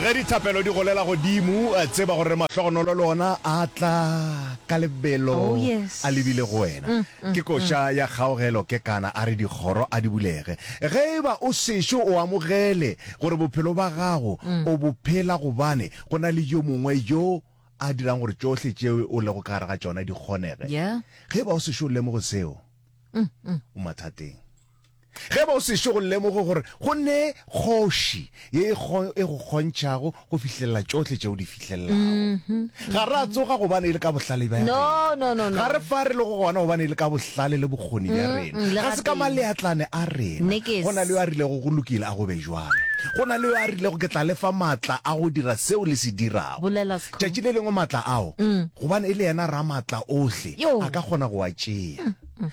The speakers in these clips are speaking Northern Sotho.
Ge dithapelo di golela godimo, tseba gore mahlogonolo le ona a tla ka lebelo Oh, yes. a lebile go wena. Ke koša ya kgaogelo kekana a re dikgoro a di bulege. Ge e ba o sešo o amogele gore bophelo ba gago o bo phela gobane go na le yo mongwe yo a dirang gore tšohle tšeo o lego ka gare ga tšona di kgonege. Yeah. Ge e ba o sešo o lemoge seo, o mathateng. Ge ba o sešo go lemoge gore go ne kgoši ye e kgo, e go kgontšhago go fihlelela tšohle tše o di fihlelelago. Ga ra tsoga gobane e le ka bohlale bja No, rena. no, no, no. Ga re fa re lego gona gobane e le ka bohlale le bokgoni bja Mm, rena. le Ga se ka gatee. maleatlane a rena. Nekes. Go na le yo a rilego go lokile a go be jwalo. Go na le yo a rilego ke tla le fa matla a go dira seo le se dirago. Bolela Skhumba. Tšatši le lengwe matla ao, Mm. gobane e le yena Ramatla ohle, Yo. a ka kgona go a tšea.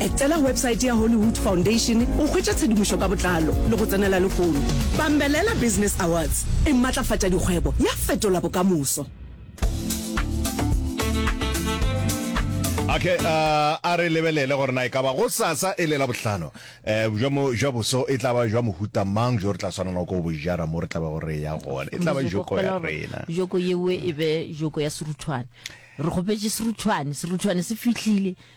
Etela websaete ya Hollywood Foundation go hwetša tshedimošo ka botlalo le go tsenela lehono. Bambelela Business Awards e matlafatša dikgwebo, ya fetola bokamoso. Okay, uh, a re lebelele gore na e ka ba go sasa e le labohlano um bja mo jwa boso e tla ba jwa mohuta mang jo re tla swanela ko bo jara mo re tla ba gore ya gona e tla ba joko ya rena joko yewe e be joko ya seruthwane re kgopetše seruthwane seruthwane se fihlile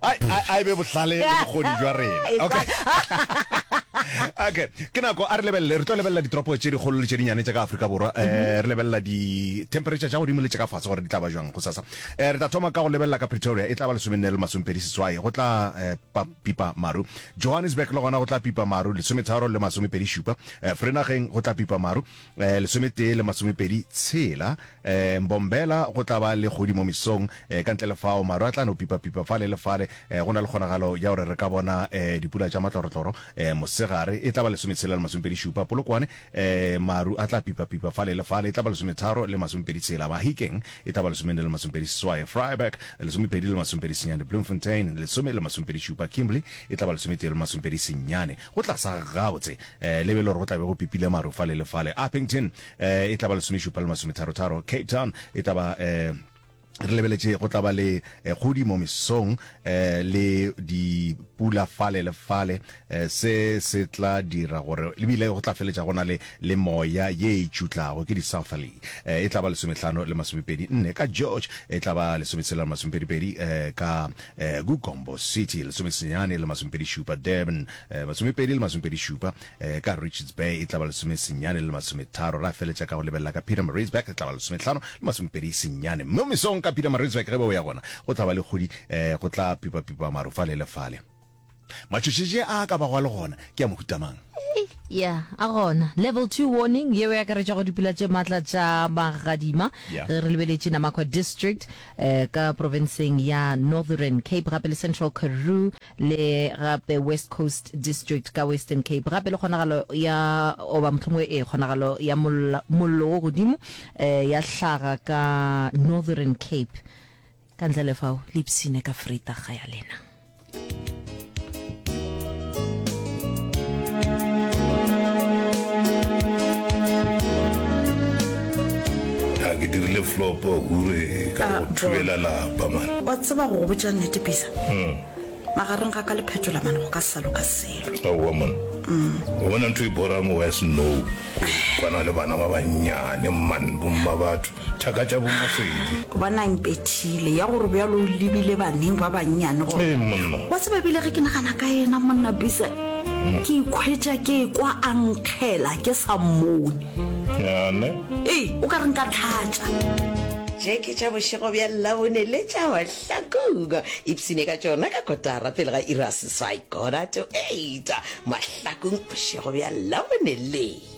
a a e be bohlale le bokgoni jwa rena okay okay ke nako a re lebelele re tlo lebelela ditoropo tše dikgolo le tše dinyane tša ka aforika borwa um re lebelela di-temperature tša godimo le tša ka fatshe gore di tla ba jwang go sasa um re tla thoma ka go lebelela ka pretoria e tla ba lesomenne le masomepedi seswai go tla um pipa maru johannesburg le gona go tla pipa maru lesometharo le masomepedi šupa um frenageng go tla pipa maru Eh, lesometee le masomepedi tshela eh, mbombela go tla ba le kgodi mo mesong eh, ka ntle le fao maru a tla no pipapipa fale le fale eh, go na le kgonagalo ya gore re ka bona eh, dipula tša matlorotloro eh, mosegare e tla ba lesometshela le masomepedi šupa polokwane eh, maru a tla pipapipa fale le fale e tla ba lesometharo le masomepedi tshela mahikeng e tla ba lesomene le masomepedi seswae freiburg lesomepedi le masomepedi senyane bloemfontein lesome le masomepedi šupa kimberley e tla ba lesometee le masomepedi senyane Go tla sa gabotse, le be e le gore go tla be go pipile maru fale le fale. Upington e tla ba lesomešupa le masometharotharo. Cape Town e tla ba, re lebeletše go tla ba le kgodi mo mesong le dipula fale le fale. Se se tla dira gore e bile go tla feletša go na le le moya ye e tšutlago, ke di-southerly. E tla ba lesomehlano le masomepedi nne ka George, e tla ba lesometshela le masomepedipedi ka Gumbo City, lesomesenyane le masomepedi šupa, Durban, masomepedi le masomepedi šupa, ka Richards Bay e tla ba lesomesenyane le masometharo, ra feletša ka go lebelela ka Pietermaritzburg, e tla ba lesomehlano le masomepedi senyane. Mo mesong ka Pietermaritzburg ge be o ya gona go tla ba le kgodi, go tla pipapipa maru fale le fale. Matšhošetše a a ka bago a le gona ke a mohuta mang? Ya, a gona. Level Two Warning yeo e akaretša go dipula tše matla tša magadima Ya. ge re lebeletše Namaqua District eh, ka profenseng ya Northern Cape gape le Central Karoo le gape West Coast District ka Western Cape gape le kgonagalo ya goba mohlomongwe e kgonagalo ya molla- mollo wo godimo eh, ya hlaga ka Northern Cape Ka ntle le fao, le ipsine ka freitaga ya lena. a ke dirile flopo hure ka go ah, thubela lapa mane wa tseba go go botša nnete pisa hmm. magareng ga ka le phetola mane go ka sa loka selo aowa mone hmm. o bona ntho e borang wa snow kwana le bana ba bannyane mman bomma batho thaka tša bomaswedi. Bona impethile ya gore bjalo o lebile baneng ba bannyane gore. Ee, monna. Wa tseba ebile ge ke nagana ka yena, monna Bisa, ke ikhwetša ke ekwa a nkgela ke sa mmone. Yane. Ee, o ka re nka tlhatša. Tše ke tša bošego bja Labone le tša mahlakong. Ipshine ka tšona ka kotara pele ga iri ya seswai, quarter to eight, mahlakong bošego bja Labone le.